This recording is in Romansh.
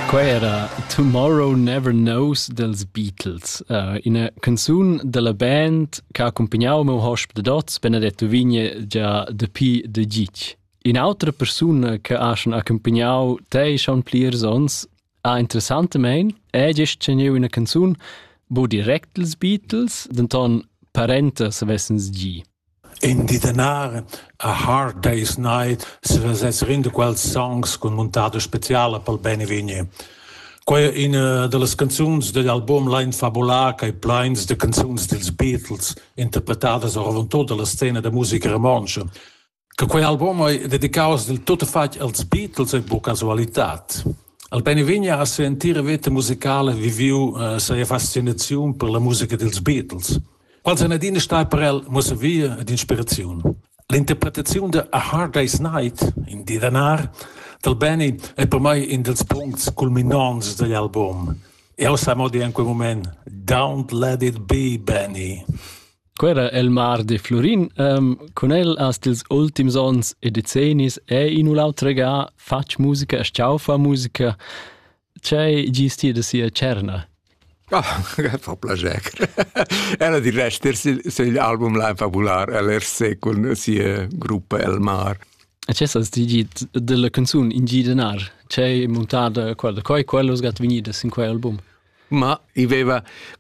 Quei era Tomorrow Never Knows dels Beatles, uh, ina canzun dalla band che ha accumpagnato il meu hosp de dots, Benedetto Vigne, già dapi de gic. Un'altra persona che ha schon accompagnato te schon plirs ons, ha interessantemente è gest teniu una canzun, bo direct els Beatles, denton parenta se vessens gi. In di danar a Hard Day's Night svesess renda quels songs cun muntada speciala pel Beinvegni. Quai è üna da las canzuns dad album Lain fabular ch'ei plains da canzuns dils Beatles, interpretadas oravontut dalla scena da musica romontscha. Che quei album ei dedicaus dil tuttafatg als Beatles ei buca casualitat. Al Beinvegni ha sia entira veta musicala viviu eh, sia fascinaziun per la musica dils Beatles. Quels han adina stà per el muossavia ed inspiraziun. L'interpretaziun da A Hard Day's Night, in di d'anar, dal Benny è per mai in dals puncts culminants dagl album. Jau sa mo dir en quel moment, Don't let it be, Benny. Quera el mar de Florin. Um, con el hast ils ultims ons e decennis è in u l'autre ga fatg musica e sciaufa musica. C'hai gist ti da sia tscherna? Ah, fa plascher. Ella di rester sugl album Line Fabular, el er se cun sia gruppa El Mar. E ce sas ti git della canzun in gidenar? C'hai montada quella, coi quello sgat venida sin quei album? Ma i veva